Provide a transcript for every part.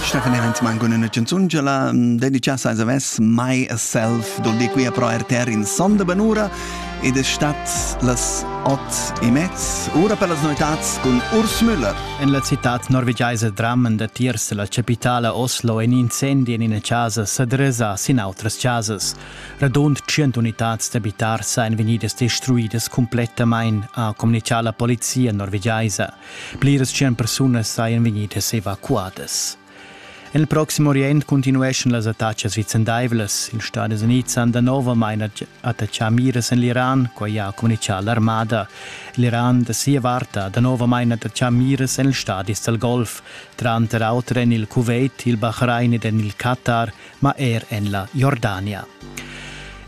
Stefan Evans man con una canzungela dedica a Zavess My Self dol di qui a pro RTR in sonda banura ed è stat las ot e mezz ora per las novitats con Urs Müller. En la città norvegiaisa drammen datiers la capitala Oslo in incendi en ina casa sa dresa sin outras casas. Radund 100 unitads d'abitar sain vegnidas destruidas completamain, ha comunicà la polizia norvegiaisa. Pliras tschien persunas sajan vegnidas evacuadas. En il Proxim Orient continueschan las attacas vicendaivlas. Ils Stadis Unids han danovamain attaccà miras en l'Iran, quai ha communitgà l'armada. L'Iran da sia vart ha danovamain attaccà miras en ils stadis dal Golf, tranter auter en il Kuwait, il Bahrain ed en il Qatar, ma er en la Jordania.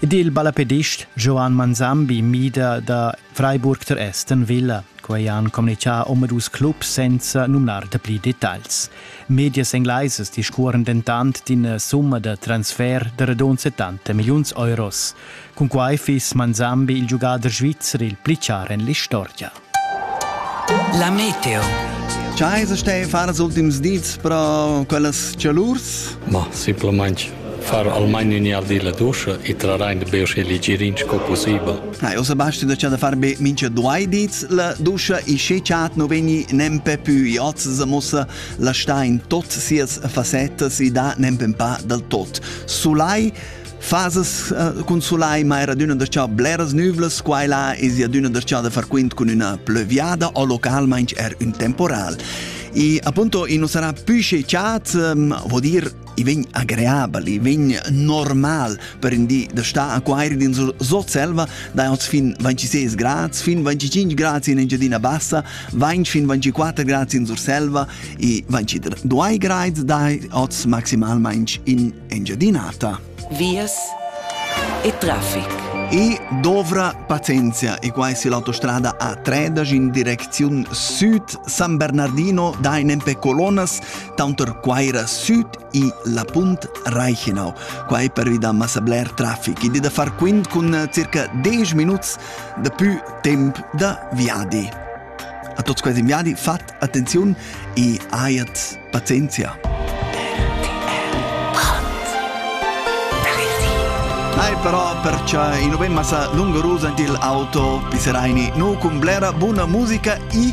Ed il ballapedist Joan Manzambi mida da Freiburg der Aston Villa. Quei han communicà omadus clubs senza numnar dapli detagls. Medias englaisas discuoran dentant d'ina summa da transfer da radund 70 milliuns euros. Cun quai fiss Manzambi il giugader svizzer il pli char en l'istorgia. La Meteo. Chai se stei far so dim's dits pro quellas cialurs? Ma, simplesmente far almain ün'jardin la duscha e trarain be usche legirin sco pussibel. Ah, io Sebastian da c'ha da far be mincha due dits la duscha e sche chat no vegni nempe pü i hoz se mossa la sta in tot sias fasettas e da nempe un pa dal tot. Sulai Fases uh, cun sulai mai radüna da ciao bleras nüvlas, quai là es adüna da ciao da far quint cun üna plöviada o localmaing er un temporal. E appunto, i non sarà più sche chat, um, vuol dir i vegn agreabel, i vegn normal per in di da sta a quairi din sot selva, da oz fin 26 grads, fin 25 grads in Engiadina Bassa, 20 fin 24 grads in sur selva e 22 grad da oz maximalmente in Engiadinata. Vias e traffic. E dovra pazienza e qua è l'autostrada A3 in direzione sud San Bernardino da in Empe Colonas Taunter Quaira süd i la punt Reichenau. Quai pervi da massa bler traffic. Id è da far quint cun circa 10 minuts de più temp da viadi. A tots questi viadi fat attenzione e aiat pazienzia. Ai però perciò in novemma sa lungo rusa il auto Piseraini nu cun blera buona musica e